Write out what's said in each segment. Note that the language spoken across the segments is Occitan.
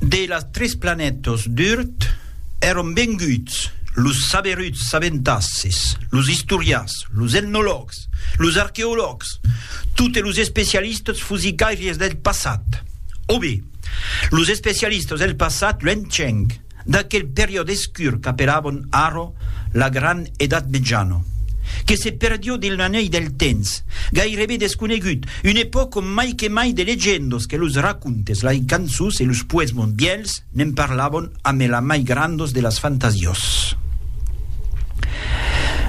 De las tres planètas d'Urt èron venguts los saberuts sabentasses, los istorians, los etnològs, los arqueològs, totes los especialistas fosicaires del passat. O be, los especialistas del passat luenhenc. d'aquel periòd escur qu'apelabon arro la gran Edat Metjana, que se perdió dins l'anelh del temps, gairebe desconegut, una epòca ont mai que mai de legendas que los racontes, lai cançons e los poesmons vièlhs ne'n parlabon amé la mai grandas de las fantasias.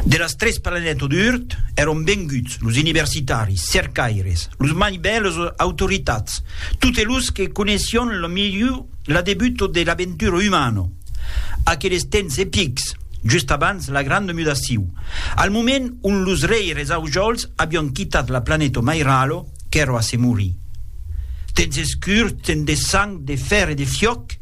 De las tres planètas d'Urt èron venguts los universitaris, cercaires, los mai bèls autoritats, totes los que coneissión la milhor L'adebuto de l'aventura umana, aqueles temps epics, just abans la granda mudaciu, al moment ont los reires Aujols avián quitat la planeta Mairalo, qu'èra a se morir. Temps escurs, temps de sang, de fèr e de fiòc,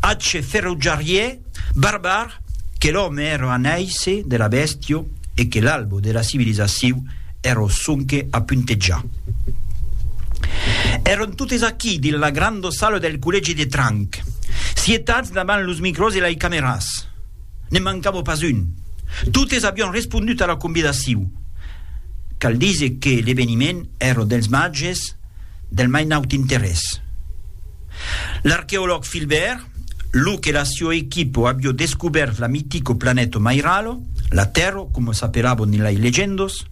atge ferotjarièr, barbar, que l'òme èra a nàisser de la bèstia e que l'albo de la civilizaciu Ero sonque a puntejar. Èron totes aquí, dins la granda sala del collègi de Tranc, sietats davant los micròs e lei cameras. Ne'n mancava pas un. Totes avián respondut a la convidaciu. Cal díser que l'eveniment èra dels màges del mai naut interès. L'arqueològ Philbert, lo que la sua equipo abió descubèrt la mitico planèto Mairalo, la Tèrro coma s'apelabo nelai legendos,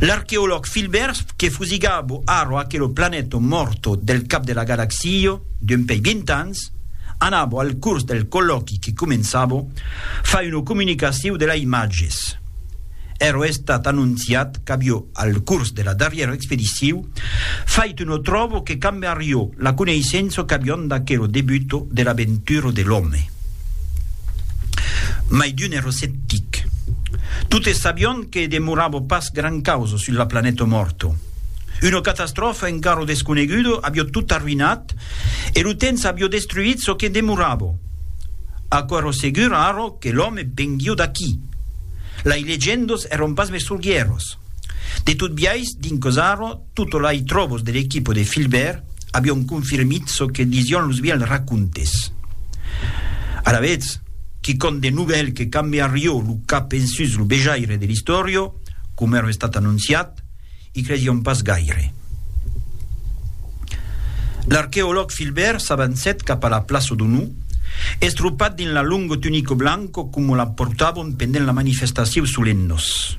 l'arqueològ Philbert que fusigabo arro aquelo planèto morto del cap de la galaxio d'un pei vint ans, anabo al curs del collòqui que començabo fa una comunicaciu de la imatges. Ero estat anonciat qu'abió al curs de la darrièra expediciu Fait no tròbo que cambe arriò la coneissença qu'avion d'aquero debut de l'aventura de l'òme. Mai d'un ero sceptic. Totes sabion que demorava pas gran causa sus la planeta mòrta. Una catastròfa encara desconeguda avió tot arruïnat e lo temps avió destruït çò que demorava. Aquò ero segur ara que l'òme venguió d'aquí. Lai legendas eron pas mes sorguieras. De tot biais, dins Cosaro, tot lai tròbos de l'equipo de Filbèrt avion confirmit çò que disión los vièlhs racontes. Alavetz, quicòm de novèl que cambiarió lo cap ensus lo vejaire de l'istòria, coma èra estat anonciat, i cresión pas gaire. L'arqueològ Filbèrt s'avancèt cap a la plaça d'Onor, estropat dins la longo tunico blanco coma la portavon pendent la manifestacion solennos.